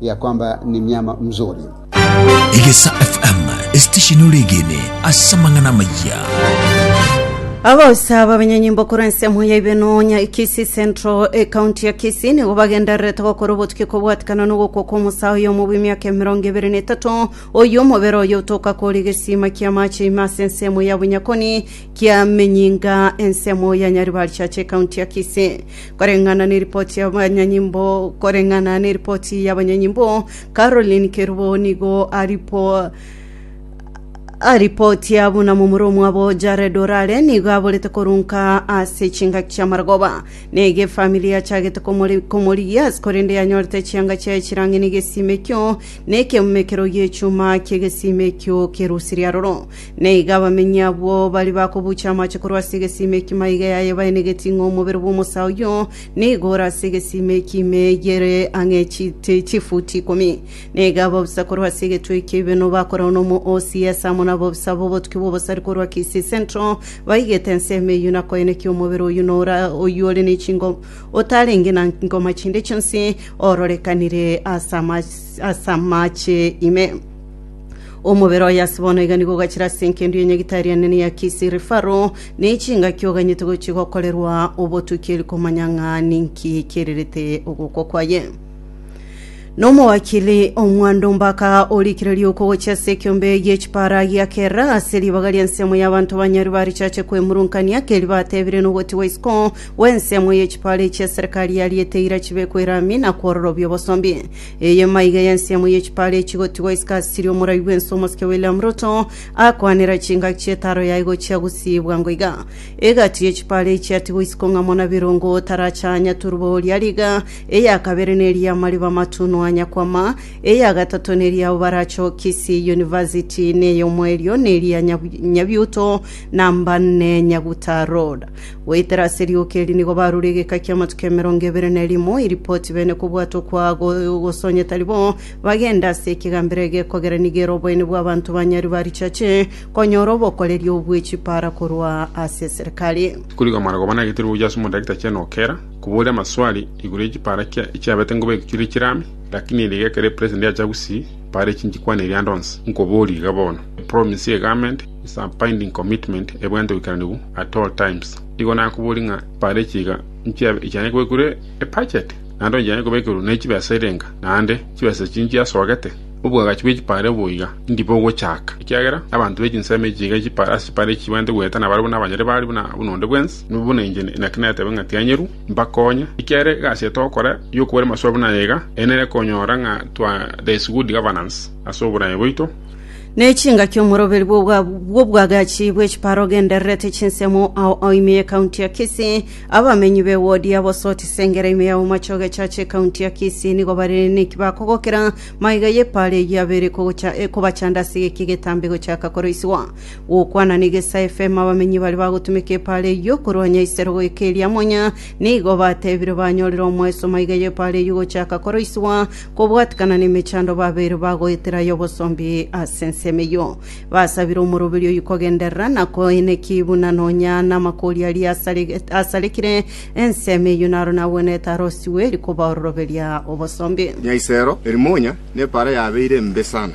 ya kwamba ni myama mzuri. Egesa FM, esitesheni ore egene ase amang'ana amaya. Abaosa b'abanyenyimbo korwa ensemo ya Ibeno nya Kisii Central ekaunti ya Kisii nigo bagendererete gokora obotuki kobwatikana n'ogokwa kw'omosae oyomo bw'emiaka emerongo ebere na etato oyio omobere oyo otoka koria egesima ki'amache ime ase ensemo ya Bunyakoni kia Menyinga ensemo ya Nyaribarichache ekaunti ya Kisii Koreng'ana neripoti y'abanyanyimbo koreng'ana neripoti y'abanyanyimbo, Caroline Kerubo nigo aripo aripotia buna momura omwabo Jared Orare nigo aborete korunka ase chingaki chi'amaragoba na egefamili yachagete komori- komorigia ase korende yanyorete chianga chiaye chirang'ina egesima ekio na ekeumekero gi'echuma ki'egesima ekio kerusirie aroro Na igo abamenyi abwo baria bakobuucha amache korwa ase egesima ekimo aiga yaye baenegetie ng'a omobere bw'omosaa oyio nigo ore ase egesima ekimo eyi ere ang'e chiti chifuti ikomi. Na igo ababisa korwa ase egetwe ekiya ibeno bakorao nomo OCS amo nababisa b'obotuki bw'obosari korwa Kisii Central baigete ensemo eyio na koenekia omobere oyio na ora oyio ore ne chingo otarenge na ngoma chinde chionsi ororekanire ase ama- ase amache ime. Omobere oye ase bono iga nigo ogachire ase engendu y'enyegita eria enene ya Kisiri Faro, ne chingaki oganyete gochia gokorerwa obotuki eri komanya ng'a ninki kererete ogokwa kwaye. Na omowakili omwando mbaka orikire riuko gochia ase ekiombe gi'echipara giakera ase ribaga ri'ensemo y'abanto ba Nyarwi barichache kwemurunkania keri batebire nogoti gwa isiko gw'ensemo y'echipara echi eserekari yariete ira chibekwe rami na kwororobia obosombi. Eyemo aiga y'ensiamo ye chipara echi igotigwa isiko ase chiria omorai bw'ense omosike William Ruto akwanera chingaki chi'etaro yaye gochia gosiibwa ngo iga. Egati ye chipara echi yatigwa isiko ng'a muna birongo otaracha anyaturwa oria riga, eya kabere neri y'amariba amatunu anyakwama, eya gatato neri y'abo baracha o Kisii University, na ey'omoerio neri ya Nyabiuto Namba 4 Nyaguta Road. Goetera ase rioka eri nigo barure egeka ki'amatuko emerongo ebere na erimo, iripoti bene kobwata okwagosonyete ari bo, bagende ase ekegambero egekogera nigo ere oboyene bw'abanto ba Nyarwi barichache konyora obokoreria obwe chipaara korwa ase eserekari. Tikori kwamana koba nagete rwo gochia ase omodaktari chai nokera koboria amaswali igoro ye chipara kia echiabete ngobe egochire chirame lakini ere egekero epresident yacha gusii paara echinchi kwana eria ande onsi nkoborie iga bono epromise ye government is a binding commitment ebwate oboikeranigu at all times. Igo nakoboria ng'a bare chiga nchia ichane kobekerwa ebudget naende onye chiane kobekerwa ne chibesa erenga naende chibesa echi nchiasogete obwagachi bwe chipare boiga ndi bogochaka ekiagera abanto be chinsemo echi iga chipare ase chipare echi chibwate goetana bare buna abanyare bare buna buna onde bwensi nibo buna inche naki natebe ng'a tianyeru mbakonye ekiagera egasi etogokora yokobara amasuba buna eye iga ere nere konyora ng'a twa there is good governance ase oboraia boito n'echingaki omoroberi bw'obwa- bw'obwagachi bw'echipara ogendererete chinsemo ao ao ime y'ekaunti ya Kisii. Abamenyi b'ewodi ya Bosoti Sengera ime ya Bomache ogechacha ekaunti ya Kisii nigo bare neki bakogokera maiga y'epara eyio abere kogocha ekobachanda ase geki getambe gochaka koroisigwa. Gokwana n'Egesa FM abamenyi baria bagotumeka epara eyio korwanya isero goika eria Monya nigo batebire banyorire omoeso maiga y'epara eyio gochaka koroisigwa Kobwatikana nemechando babeire bagoetera y'obosombi ase ensemo eyio. Basabire omoroberi oyio kogenderera na koenekia buna nonya namakori aria asarege- asarekire ensemo eyio naro nagwenerete arosigwe eri koba ororoberia obosombi. Nyaisero Herimonya nepaara yabeire embe sana.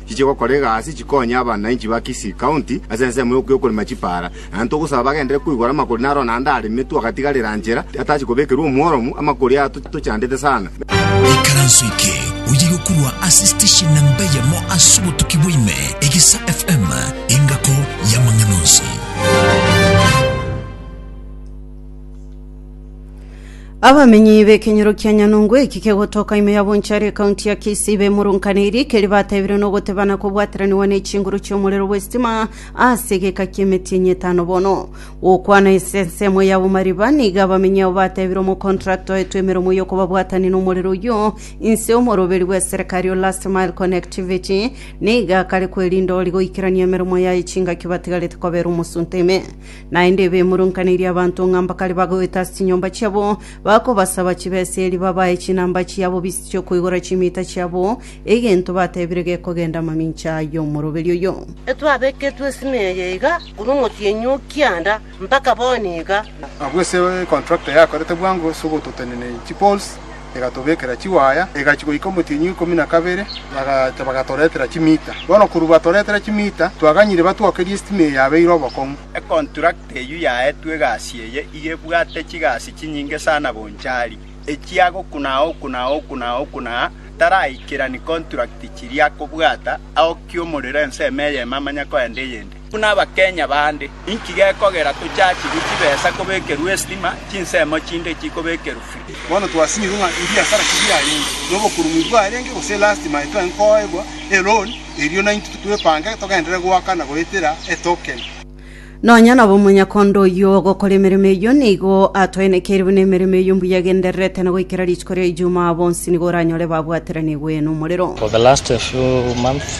chiche gokora egasi chikonye abanainchi ba Kisii County ase ensemo y'okorema chipaara, naende togosaba bagenderere koigora amakori naro naende aremetwe agatigarera nchera atachia kobekerwa omworomu, amakori aya tochandete sana. Ekaranso eke oye yokorwa ase station namba eyemo ase obotuki bwa ime, Egesa FM, engako y'amang'ana onsi. Abamenyi b'ekenyoro kia Nyanungu eki kegotoka ime ya Bonchari ekaunti ya Kisii bemurunkaneirie keri batebire nogotebana kobwateraniwa ne chinguru chi'omorero bw'esitima ase egeka ki'emetienyi etano bono. Gokwana ase ensemo yabo mariba nigo abamenyi abo batebire omokontrakta oetwe emeromo y'okobabwatania n'omorero oyio inse omoroberi bw'eserekari o Last Mile Connectivity nigo akare kwerinda ori goikerania emeromo yaye chingaki batigarete kobera omosunte ime. Naende bemoronkaneirie abanto ng'a mbakare bagoeta ase chinyomba chiabo, bakobasaba chibeseri babae chinamba chiabo bise chi'okoigora chimiita chiabo, egento batebire gekogenda amamincha y'omoroberi oyo. Intwe abeketwe esime eye iga korwa omotienyi o kianda mpaka bono iga. Abwo ase econtractor yakorete bwango ase ogototenenia chipoles. egatobekera chiwaaya, egachia goika omotienyi oikomi na kabere, bagacha bagatoretera chimiita. Bono korwa batoretera chimiita, twaganyire batwokerie esitima eye yabeire obokong'u. Econtract eyio yaetwe egasi eye iga ebwate chigasi chinyinge sana bonchari, echia gokuna aokuna aokuna aokuna aa taraikerani contract chiria akobwata aokia omorero ensemo eyemo amanya koenda eyende. Buna Abakenya bande, inki gekogera tochachigwe chibesa kobekerwa estima, chinsemo chinde chikobekerwa free? Bono twasinyigwe ng'a ebiasara tibiarenge nobokurumu ebwarenge gose elastima etwenge koegwa eloan, erio naintwe twepange togenderere goaka na goetera etoken. Nonya nabo omonyakondo oyio ogokora emeremo eyio nigo atoenekeire buna emeremo eyio mbuya egendererete, na goikera rituko ria Ijumaa bonsi nigo oranyore babwateranigwe nomorero. For the last few months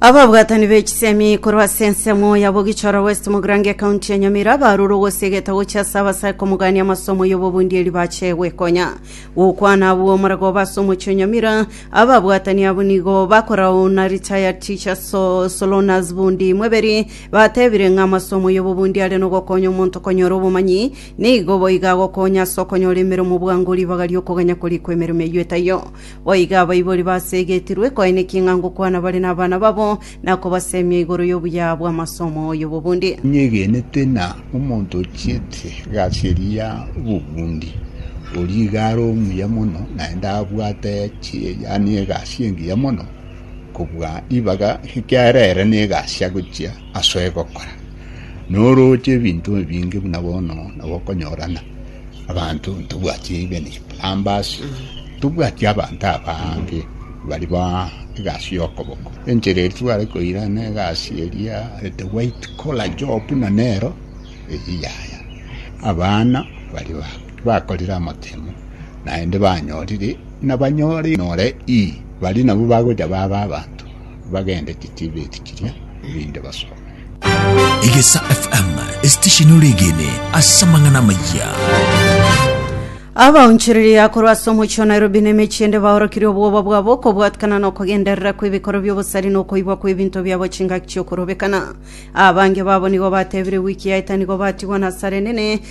ababwatani b'echisemi korwa ase ensemo ya bogichoro west mogirango ekaunti ya nyamira barure ogosegeta gochia ase abasaya komogania amasomo y'obobundieri bache gwekonya gokwana abwo omaragoba ase omochie o nyamira ababwatani abo nigo bakorauna retired teacher so, solonas bundi mweberi batebire ng'a amasomo y'obobundi are nogokonya omonto konyora obomanyi nigo boiga agokonya ase okonyora emeremo bwango ribaga ri'okoganya korikwa emeremo eyio etaiyo Boigo abaibori baseegetirwe koanekia ng'a ngokwana bare nabana babo, na kobaseemia igoro y'obuya bw'amasomo y'obobundia. Inyegenete ng'a omonto ochiete egasi eria y'obobundia, oria iga are omuya mono, naende abwate chie, yaani egasi engiya mono kobua ribaga, ekiagera ere negasi agochia asoe gokora. Norooche ebinto ebinge buna bono nabo okonyorana abanto ntobwati even plumbers ntobwati abanto abange bari ba egasi y'okoboko enchera eria tware koirana egasi eria the white collar job buna nero eyio yaya abana bari ba bakorire amatemo naende banyorire nabanyore nore ii bari nabo bagocha baba abanto bagende chitibeti chiria erinde basoe. Egesa FM, esitesheni ore egene ase amang'ana amaya. abaonchoreria korwa ase omochie wa nairobi na emechie ende baorokirie obwoba bwabo okobwatikana na okogenderera kw'ebikoro bi'obosari na okoibwa kw'ebinto biabo chingaki chi'okorobekana abange babo nigo batebire wiki yaeta nigo batigwa nasare nene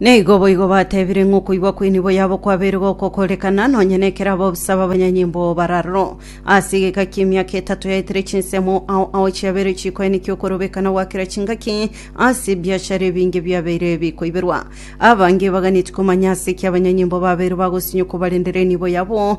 Naigo boigo bateebire ng'a okoigwa kw'enibo yabo kwabeire gokokorekana, nonya nekero abwo bose ababanyanyimbo bararoro. Ase egeka ki'emiaka etato yaetire chinsemo ao ao chiabeire chikoenikia okorobekana gwa kera chingaki ase ebiachara ebinge biabeire bikoiberwa. Abange baganeti komanya ase ki abanyanyimbo babeire bagosinywa kobarendera enibo yabo,